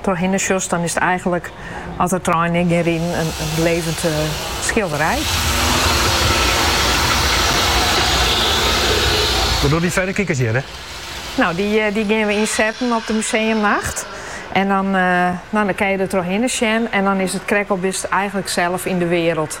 Trochhinne sjochst, dan is it eigenlik, as de treinen yn gean riden, in levend skilderij. Wat dogge dy ferrekikers hjir? Nou, dy geane we ynsetten op de museumnacht. En dan kinne je der trochhinne sjen en dan is it krekt al bist eigenlik sels yn de wêreld.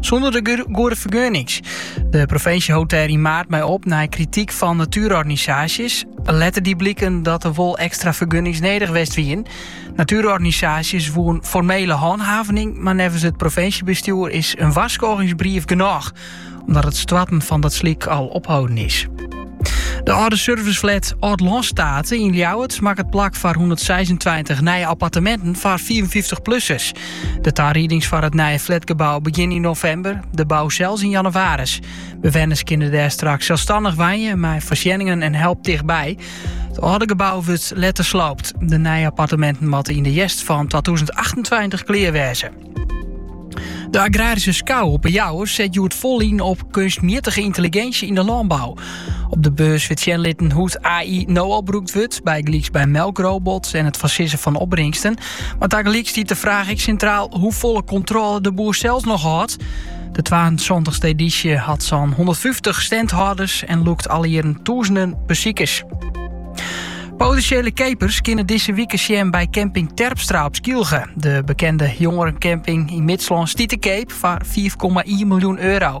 Sûnder de goede fergunnings. De provinsje hold dêr yn maart mei op nei krityk fan natuurorganisaasjes. Letter die bliken dat der wol ekstra fergunnings nedich west wien. Natuurorganisaasjes woen formele hanthavening, mar neffens it provinsjebestjoer is in warskôgingsbrief genôch, omdat it stoarten van dat slik al opholden is. De âlde serviceflat Aldlânstate yn Ljouwert makket plak foar 126 nije apparteminten foar 55-plussers. De tariedings foar it nije flatgebou begjinne yn novimber, de bou sels yn jannewaris. Bewenners kinne dêr straks selsstannich wenje mei foarsjenningen en help tichtby. It âlde gebou wurdt letter sloopt. De nije apparteminten moatte yn de hjerst fan 2028 klear wêze. De Agraryske Skou op 'e Jouwer set hjoed fol yn op kunstmjittige yntelliginsje yn de lânbou. Op de beurs wurdt sjen litten hoe't AI no al brûkt wurdt, bygelyks by melkrobots en it foarsizzen fan opbringsten. Mar tagelyk stiet de fraach ek sintraal hoefolle kontrôle de boer zelfs nog hâldt. De 72e edysje hat sa'n 150 standhâlders en lûkt alle jierren tûzenen besikers. Potinsjele keapers kinne dizze wike sjen by camping Terpstra op Skylge. De bekende jongerencamping yn Midslân stiet te keap foar 4,1 miljoen euro.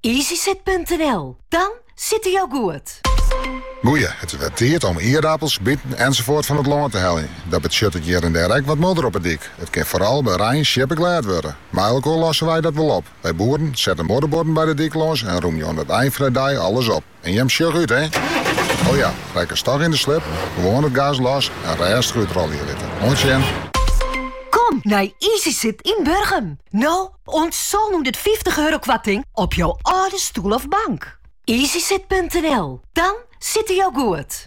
Easysit.nl, dan sitte jo goed! Goeie, it is wer tiid om ierdapels, biten ensafuort fan it lân te heljen. Dat betsjuttet hjir en dêr ek wat modder op 'e dyk. It kin foaral by rein sjippeglêd wurde. Mei elkoar losse wy dat wol op. Wy boeren sette modderbuorden by de dyk lâns en rûmje oan it ein fan 'e dei alles op. En jim sjogge út, hè? O ja, rekkest dochs yn de slip, gewoan it gaas los en rêstich útrolje litte. Oant sjen! Kom nei Easysit yn Burgum. No oant sânhûndertfyftich euro koarting op jo âlde stoel of bank. Easysit.nl, dan sitte jo goed!